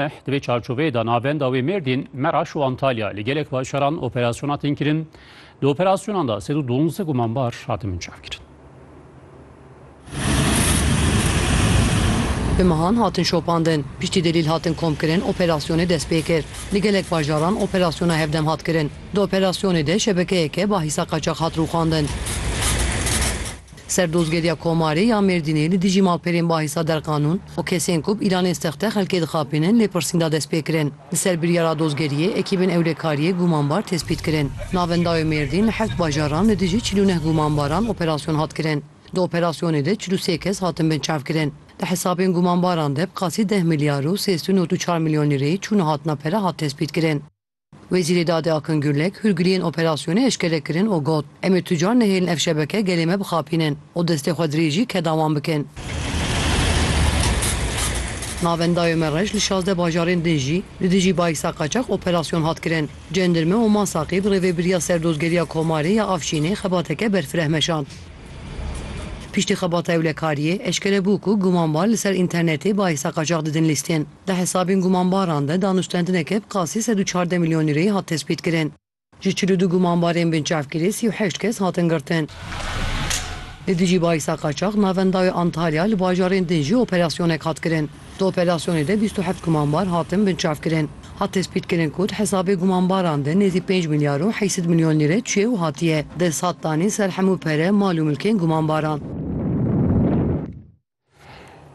Eh, di vê çarçoveyê de navenda wê Mêrdîn, Meraş û Antalya li gelek bajaran operasyona tên kirin. Di operasyonan de sed û duwazdeh gumanbar hatin binçavkirin. Bi mehan hatin şopandin, piştî delîl hatin komkirin operasyonê dest pê kir. Li gelek bajaran operasyona hevdem hat kirin. Di operasyonê de şebekeyeke bahîsa qaçax hat rûxandin. Serdozgeriya Komarê ya Mêrdînê li dijî malperên bahisa derqanûn û kesên ku bi îlanên sexte xelkê dixapînin lêpirsîn da destpêkirin. Li ser biryara dozgeriyê ekîbên ewlekariyê gumanbar tespît kirin. Navenda wê Mêrdîn li heft bajaran li dijî çil û neh gumanbaran operasyon hat kirin. Di operasyonê de çil û sê kes hatin binçavkirin. Di hesabên gumanbaran de bi qasî deh milyar û sêzdû nod û çar milyon lîreyê çûna hatina pere hat tespîtkirin. Wezîrê Dadê Akın Gürlek hûrgiliyên operasyonê eşkere kirin û got, Em ê tucar nehêlin ev şebeke gelê me bixapînin û destê xwe dirêjî keda wan bikin. Navenda Yomerrej li şazdeh bajarên din jî li dijî Bayksa Qaçax operasyon hat kirin. Cendirme û Masaqî bi rêvebiriya Serdozgeriya Komarê ya Afşînê xebateke berfireh meşand. Piştî xebata ewlekariyê, eşkere bû ku gumanbar li ser înternetê Bayksa Qaçax didin lîstin. Di hesabên gumanbaran de danûstendineke bi qasî sed û çardeh milyon lîreyê hat tespîtkirin. Ji çil û du gumanbarên binçavkirî sî û heşt kes hatin girtin. Li dijî bahisa qaçax navenda wê Antalya li bajarên din jî operasyonek hat kirin. Di operasyonê de bîst û heft gumanbar hatin binçavkirin. Hat tespîtkirin ku di hesabê gumanbaran de nêzî pênc milyar û heşt sed milyon lîre çiye û hatiye desthatdanîn ser hemû pere, mal û milkên gumanbaran.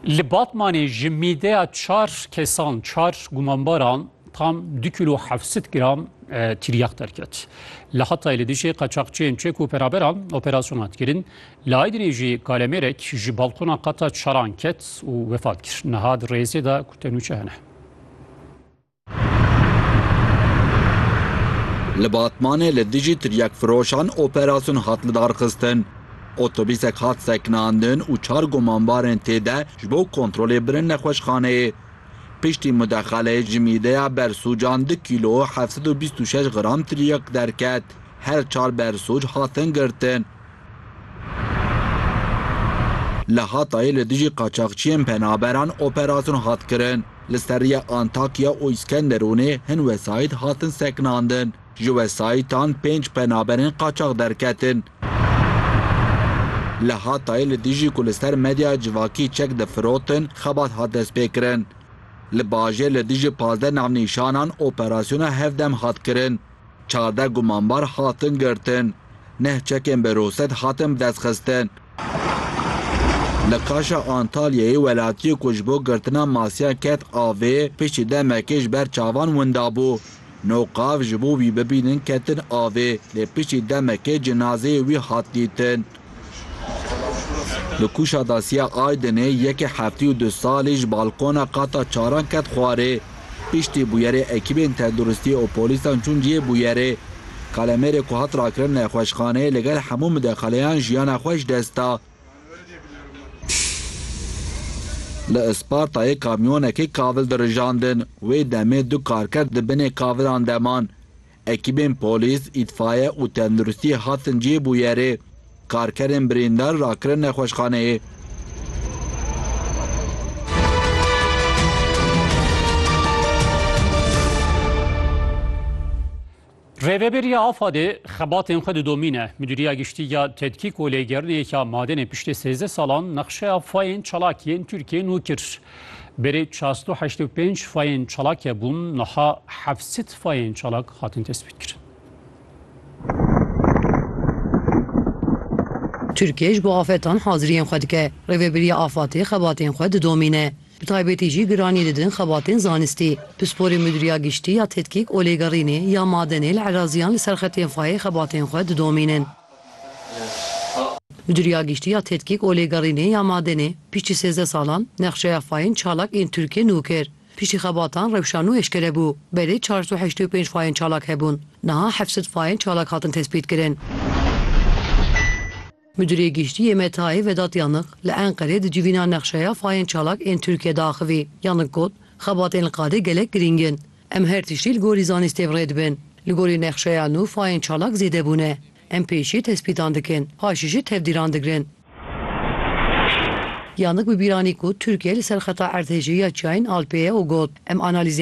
Li Batmanê ji mîdeya çar kesan, çar gumanbaran tam du kilo hevsit gram e, tiryak derket. Li Hatayê li dijî qaçaxçiyên çek û peraberan operasyona dikirin. Li Aydinê jî kalemêrek ji balkona qata çaran ket û wefat kir. Niha di rêzê de ku tenûçe hene. Li Batmanê li dijî tiryakfiroşan operasyon hat lidarxistin. Otobîsek hat sekinandin û çar gumanbarên tê de ji bo kontrolê birin nexweşxaneyê. Piştî mudexeleyê ji mîdeya bersûcan du kîlo û heft sed û bîst û şeş gram tiryak derket. Her çar bersûc hatin girtin. Li Hatayê li dijî qaçaxçiyên penaberan operasyonu hat kirin. Li ser rêya Antakya û Îskenderûnê hin wesayît hatin sekinandin. Ji wesayîtan pênc penaberên qaçax derketin. Li Hatayê li dijî ku li ser medyaya civakî çek difirotin xebat hat destpêkirin. Li bajêr li dijî pazdeh navnîşanan operasyona hevdem hat kirin. Çardeh gumanbar hatin girtin. Neh çekên berosed hatin bidestxistin. Li Kaşa Antalyayê welatiyê ku ji bo girtina masiyan ket avê, piştî demekê ji ber çavan winda bû. Nû qav ji bo wî bibînin ketin avê, lê piştî demekê cinazeyê wî hat dîtin. Li kûşa Dasiya Aydinê yekê heftî û du salî ji balkona qata çaran ket xwarê. Piştî bûyerê ekîbên tenduristiyê û polîsan çûn cihê bûyerê. Kalemêrê ku hat rakirin nexweşxaneyê li gel hemû midexaleyan jiyana xwe ji dest da. Li Ispartayê kamyonekê kavil dirijandin. Wê demê du karker di binê kavilan de man. Ekîbên polîs, îtfaye û tenduristiyê hatin cihê bûyerê. Karkerên birîndar rakirin nexweşxaneyê. Rêveberiya AFAD'ê xebatên xwe didomîne. Midûriya Giştî ya Tedkîk û Lêgerînê ya Madenê piştî sêzdeh salan nexşeya fayên çalakiyên Tirkiyê nû kir. Berê çasto heşt û pênc fayên çalakê bûn, niha heft sed fayên çalak hatin tespîtkirin. Tirkiye ji bo afetan haziriyên xwe dike. Rêveberiya afatê xebatên xwe didomîne. Bi taybetî jî giranî didin xebatên zanistî. Pisporê Mudîriya Giştî ya Tedkîk û Lêgerînê ya Madenê li Eraziyan li ser xetên fayê xebatên xwe didomînin. Mudirîya Giştî ya Tedkîk û Lêgerînê ya Madenê piştî sêzdeh salan nexşeya fayên çalak ên Tirkiyê nû kir. Piştî xebatan rewşa nû eşkere bû. Belê çar sed û heştê û pênc fayên çalak hebûn. Niha heft sed fayên çalak hatin tespîtkirin. Mudirê Giştî yê Metayê Vedat Yanık li Enqerê di civîna nexşeya fayên çalak ên Tirkiyê de axivî. Yanık got, Xebatên li qadê gelek girîng in. Em her tiştî li gorî zanîstê bi rê dibin. Li gorî nexşeya nû fayên çalak zêde bûne. Em pêşî tespîtan dikin, paşî jî tevdîran digirin. Yannick bi bîranî ku Tirkiye li ser xeta erdhejî ya çiyayên Alpê ye û got, Em analîzên